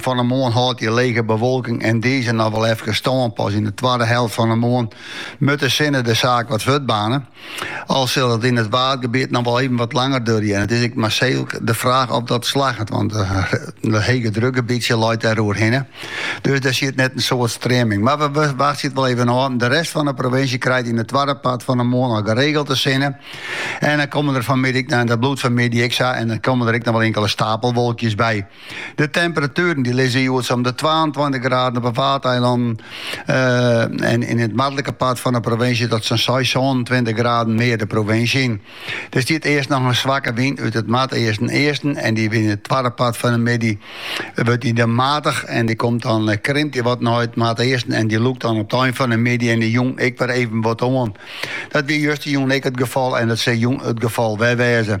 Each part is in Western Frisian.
Fan 'e moarn hâldt hjir lege bewolking en dizze noch wol efkes stân. Pas yn 'e twadde helte fan 'e moarn moat de sinne de saak wat fuortbaarne. Al sil it yn it Waadgebiet noch wol even wat langer duorje en it is ek mar sa de fraach oft dat slagget, want dat hege drukgebietsje leit dêr oer hinne. Dus dêr sit net in soad streaming. Mar we wachtsje it wol even ôf. De rest fan 'e provinsje krijt yn it twadde part fan 'e moarn al geregeld de sinne en dan komme der fanmid, en dat bliuwt fanmiddei ek sa, en dan komme der ek noch wol inkele stapelwolkjes by. De temperatueren die lizze hjoed om de 22 graden op 'e Waadeilannen eh, en yn it noardlike part fan 'e provinsje tot sa'n 6, 27 graden mear de provinsje yn. Der stiet earst noch in swakke wyn út it noardeasten-easten en die wyn it twadde part fan 'e middei wurdt die dan matich en die komt dan eh, krimpt die wat nei it noardeasten en die lûkt dan op de ein fan 'e middei en de jûn ek wer even wat oan. Dat wie justerjûn ek it gefal en dat sil jûn it gefal wer wêze.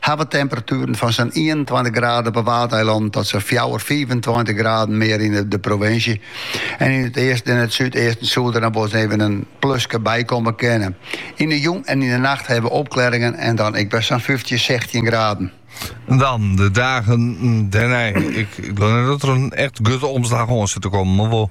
hawwe temperatueren fan sa'n ienentweintich graden op 'e Waadeilannen tot sa'n fjouwer, fiifentweintich graden mear yn de provinsje. En yn it easten en it súdeasten soe der noch wol ris even in pluske by komme kinne. Yn 'e jûn en yn 'e nacht hawwe we opklearringen en dan ek wer sa'n fyftjin, sechstjin graden. Dan de dagen dêrnei. Ik gleau net dat der in echt grutte omslach oan sit te kommen, mar wol.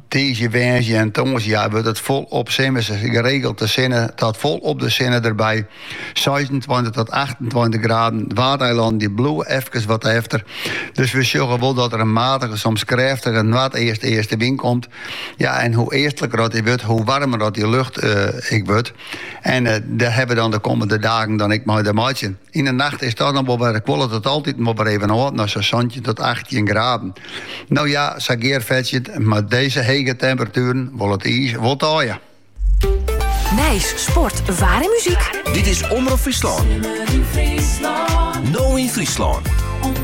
Tiisdei, woansdei en tongersdei wurdt it fol op simmers geregeld de sinne oant fol op de sinne derby. Seisentweintich tot achtentweintich graden. Waadeilannen die bliuwe efkes wat efter. Dus we sjogge wol dat der in matige, soms krêftige noardeast-eastewyn komt. Ja, en hoe eastliker dat die wurdt, hoe warmer dat die lucht ek wurdt. En dêr hawwe we dan de kommende dagen dan ek mei te meitsjen. Yn de nacht is dat dan wol wer, kuollet it altyd wol wer even ôf nei sa'n santjin tot achttjin graden. No ja, sa Geart Fetsje, mei dizze hege temperatueren wol it iis wol taaie. Nijs, sport, waar en muziek. Dit is Omrop Fryslân. No yn Fryslân.